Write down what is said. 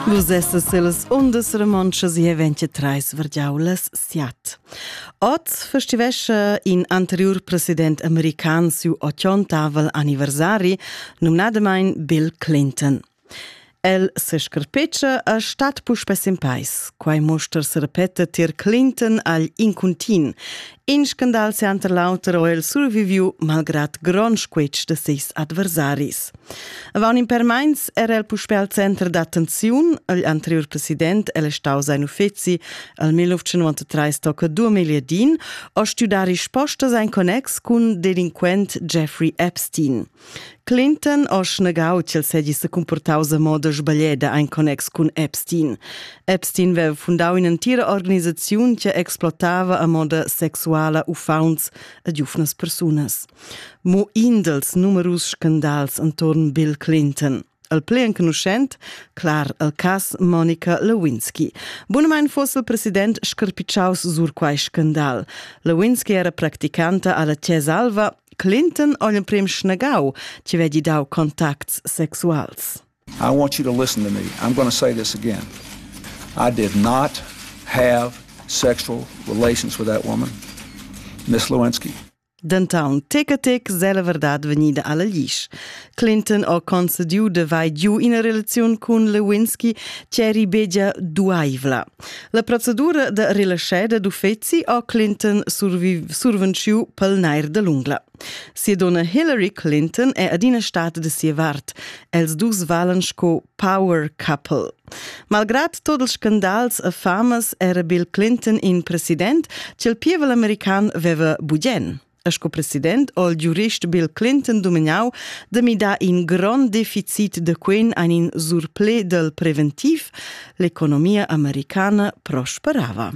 Vus essas las undas romontschas e 23 vergiaulas siat. Oz festivescha in anterior president american siu 80 anniversari, numnadamain Bill Clinton. El se scarpeccia a stat puspè sin pais. Quai mostra se repeta tier Clinton agl incuntin In scandal center l'auter ho el surviviu malgrad grond squitsch de seis adversaris. Avant in per meins era el puspè al center d'attenziun. Il anterior president el è stau sein uffizi al 1993 tocca 2000 din, a studar rispostas ein connex cun delinquent Jeffrey Epstein. Clinton ho snegau ch'el segi secumportaus a moda sbaglieda ein connex cun Epstein. Epstein veva fundau in'entira organisaziun che explotava a moda sexuala uffauns a giufnas persunas. Mo in dals numerus scandals intorn Bill Clinton – el plei enconuschent, clar el cas Monica Lewinsky. Bunamain fosse il president scarpiciaus sur quai scandal. Lewinsky era practicanta alla Cesalva, Clinton ogl prim schnagau, ci vedi dau contacts sexuals. I want you to listen to me. I'm going to say this again. I did not have sexual relations with that woman, Miss Lewinsky. Denton tec a tec se la verdad vegnida alla glisch. Clinton ha concediu de vai giu ina relaziun cun Lewinsky che eri begia duaivla. La procedura de relascheda d'uffeci ha Clinton survenciu pel nair de l'ungla. Sia donna Hillary Clinton è adina stata de sia vart. Els dus valen sco power couple. Malgrad tot ils scandals e famas era Bill Clinton in president ch'il pievel american veva bugen. E sco president ho il giurist Bill Clinton dominau da midar in grond deficit de quen ein in surple del preventiv, l'economia americana prosperava.